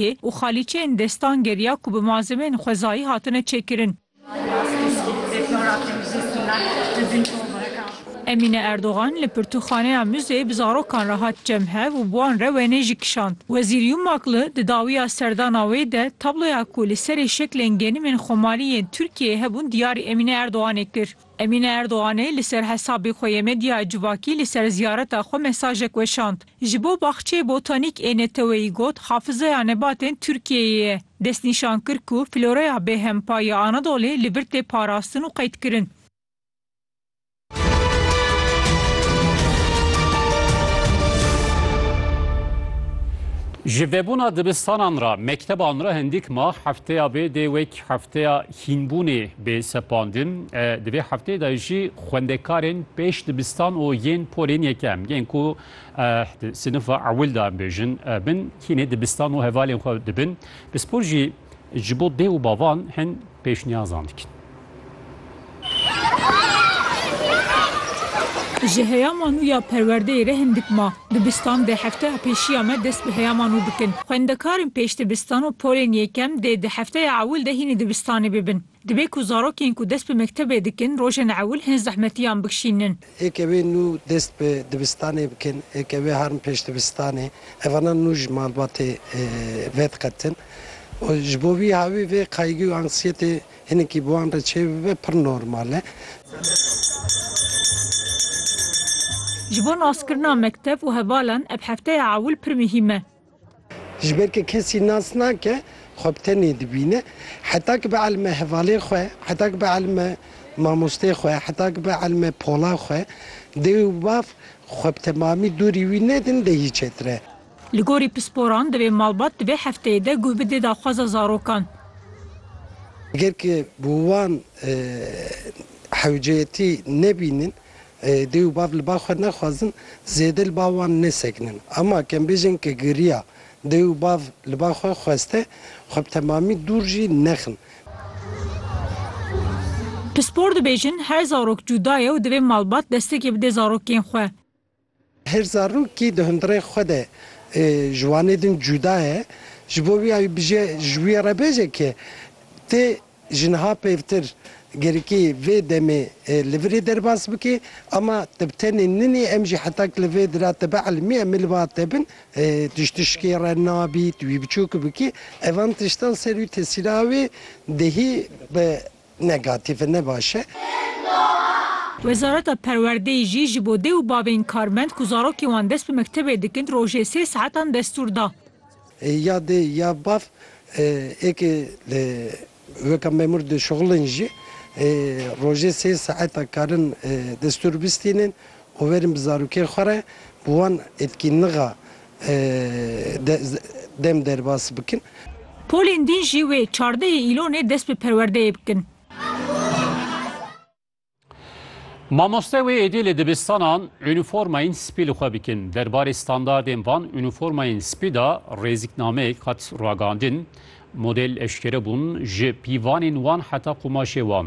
Xwezayê û xalîçeyên destan geriya ku bi malzemeyên xwezayî hatine çêkirin. Emîne Erdogan li pirtûkxaneya Müzeyê bi zarokan re hat cem hev û bi wan re wêneyê jî kişand. Wezîr Yumak li di dawiya serdana wê de tabloya ku li serê şeklên genimên Xomalî yên Tirkiyeyê hebûn diyarî Emîne Erdoganê kir. Emîne Erdoganê li ser hesabê xwe yê medyaya civakî li ser ziyareta xwe mesajek weşand. Ji bo Baxçeyê Botanîk ê neteweyî got Hafizeya Nebatên Tirkiyeyê ye. Destnîşan kir ku floreya bêhempa ya Anadolê li vir tê parastin û qeydkirin. Ji vebûna dibistanan re, mekteban re hindîk ma hefteya vê dê wek hefteya Hînbûnê bê sepandin. Di vê hefteyê de jî xwendekarên pêş dibistan û yên polên yekem yên ku di sinifa ewil de em bêjin bin hînê dibistan û hevalên xwe dibin pispor jî ji bo dê û bavan hin pêşniyazan dikin. Ji heya manûya perwerdeyê re hindik ma. Dibistan dê hefteya pêşiya me dest bi heyama nû bikin. Xwendekarên pêşdibistan û polên yekem dê di hefteya ewil de hînî dibistanê bibin. Dibe ku zarokên ku dest bi mektebê dikin rojên ewil hin zehmetiyan bikşînin. Ekevê nû dest bi dibistanê bikin, ekevê harm pêşdibistanê, evana nû ji malbatê vediqetin û ji bo vî havî vê qayîgî û anksiyetê Hinekî bi wan re çêbibe pir normal e. Ji bo naskirina mektev û hevalan ev hefteya ewil pir muhîm e. Ji ber ke kesî nas nake, xwe bi tenê dibîne. Heta ki bi elme hevalê xwe, heta ki bi elme mamostê xwe, heta ki bi elme pola xwe, dê û bav xwe bi temamî dûrî wî nedin dê hî çêtir e. Li gorî pisporan divê malbat di vê hefteyê de guh bide daxwaza zarokan. Eger ku bi wan hewceyetî nebînin, dê û bav li ba xwe nexwazin zêde li ba wan nesekinin. Ama kembêjên ku giriya dê û bav li ba xwe xweste, xwe bi temamî dûr jî nexin. Pispor dibêjin, her zarok cuda ye û divê malbat destekê bide zarokên xwe. Her zarokî di hundirê xwe de ji wanê din cuda ye, ji bo wî ew bije ji wî re bêje ke tê ji niha pêvtir gerikê vê demê li virê derbas bike ama te bi tenê ninê em jî heta ku li vê dira te bielimiye em ê li ba te bin tu ji tişkê re nabî tu wî biçûk bikî evan tiştan ser wî tesîra wê dihî bi Negatif e ne baş e. Wezareta Perwerdeyê jî ji bo dê û bavên karmend ku zarokên wan dest bi mektebê dikin rojê sê saetan destûr da. Ya dê ya bav êkê li weka memûr dişuxulin jî rojê sê saetan karin destûr bistînin û werin bi zarokên xwe re bi wan etkî nixa Dem derbas bikin. Polên din jî wê çardehê îlonê dest bi perwerdeyê bikin. Mamoste wê êdî li dibistanan unîformayên spî li xwe bikin. Derbarê standardên van unîformayên spî de rêzîknameyek hat ragihandin. Model eşkere bûn, ji pîvanên wan heta qumaşê wan.